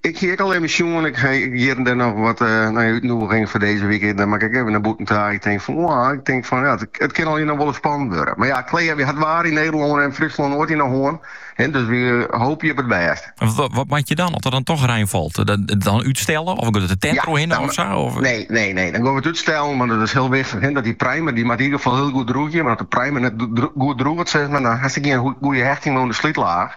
Ik hie ek al even sjoen, ik hie hjir en dêr noch wat útnûgings foar dizze wike en dan moat ik ek even nei bûten ta. Ik tink fan oa, ik tink fan ja, it kin allinnich noch wol ris spannend wurde. Mar ja, helaas, wy ha it waar yn Nederlân en Fryslân noait yn 'e hân, dus wy hoopje op it bêst. Wat moat je dan as der dan toch rein falt? Dan útstelle of giet der in tint oerhinne of sa? Nee, nee, nee, dan gean we it útstellen, want it is hiel wichtich dat dy primer, dy moat yn ieder gefal hiel goed drûgje, want as de primer net goed drûget, dan hast dêr gjin goede hechting oan de slytlaach.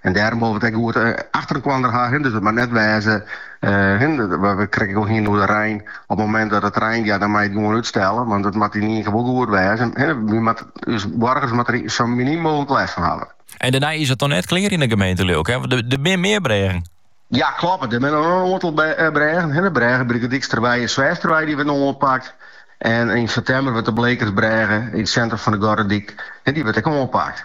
En dêrom wol we it ek goed achter elkander ha. Dus it moat net wêze, we krigen it al hinne oer de rein. Op it momint dat it reint, ja dan moatte je it gewoan útstelle, want it moat yn ien kear wol goed wêze. Wy moatte, ús boargers moatte der sa miniem mooglik lêst fan hawwe. En dêrnei is it noch net klear yn de gemeente lyk, hè? Want der binne mear brêgen. Ja, kloppet. Der binne noch in oantal brêgen. De brêge by de Dyksterwei en Sweachsterwei dy wurde oanpakt. En yn septimber wurdt de Blekersbrêge yn it sintrum fan De Gordyk, dy wurdt ek oanpakt.